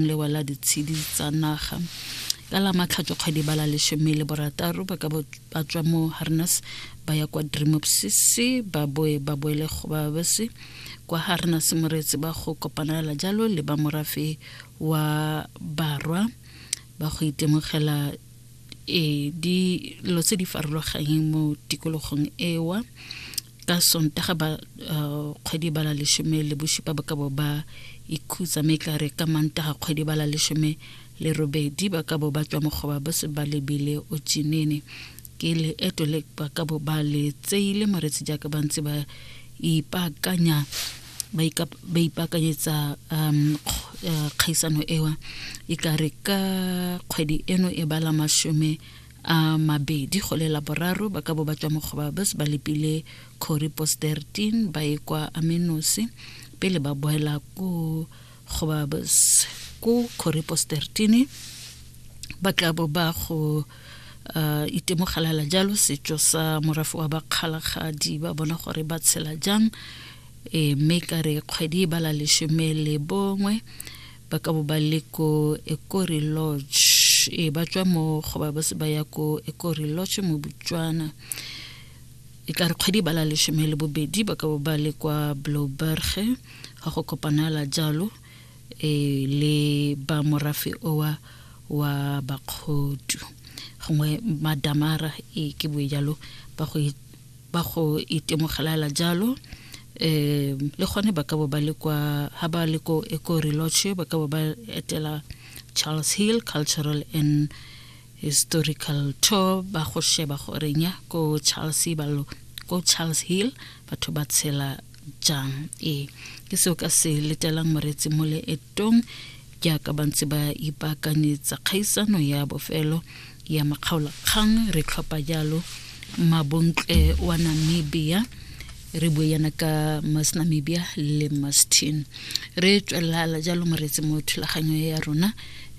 lewa la ditshedi tsa naga ka la matlhatso kgwedi ba la lesome le borataro ba ka ba tswa mo harnas ba ya kwa drimopsisi ba boe ba boele go ba bese kwa harnas moreetsi ba go kopanela jalo le ba morafe wa barwa ba go itemogela e dilo tse di farologanyeng mo tikologong ewa ka sontaga ba uh, kgwedi ba la lesome le bosupa ba ka bo ba ikhutsa mme tla re ka mantaga kgwedi ba la lesome le robedi ba ka bo ba tswa mogoba ba se ba lebile o tsinene ke leeto le ba ka bo ba le tseile moretsi jaaka ba ntse ba ipaakanya ba ipaakanyetsa um eh, kgaisano ewa e ka re ka kgwedi eno e bala masome a mabedi go le laboraro ba ka bo ba tswa mo gobabes ba lepile corey post 13 ba e kwa amenosi pele ba boela ko gobabes ko corey post 13 ba tla bo ba go uh, itemogelela jalo setso sa morafe wa bakgalagadi ba bona gore ba tshela jang e mme ka re kgwedi e bala lesome le bongwe ba ka bo ba le ko ekori lodge e ba tswa mo go ba ba se ba ya ko ekori lodge mo botswana e tla re kgwedi ba la lesome le bobedi ba ka bo ba le kwa bloberge ga go kopanala jalo e le ba morafe owa wa bakgodu gongwe madamara e ke boe jalo ba go ba go itemogelala jalo um le gone ba ka bo ba le kwa ga ba le ko ecoreloche ba ka bo ba etela charles hill cultural and historical tour ba go sheba gorenya ko charles balo ko charles hill batho ba tshela jang ee ke seo ka se letelang moretsi mole e tong jaaka ba ntse ba ipaakanyetsa kgaisano ya bofelo ya makgaolakgang re tlhopha jalo mabontle wa namibia re bue yana ka mas namibia le mastin re tswelelala jalo moretse mo thulaganyo ya rona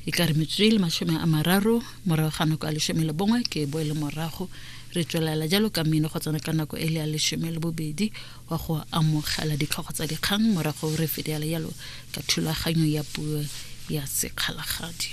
e ka re metsotso e le masome a mararo morago ga nako ya lesome le bongwe ke boele morago re tswelela jalo ka mmino go tsena ka nako e le ya lesome le bobedi kwa go amogela ditlhogo tsa dikgang morago re fediala yalo ka thulaganyo ya puo ya sekgalagadi.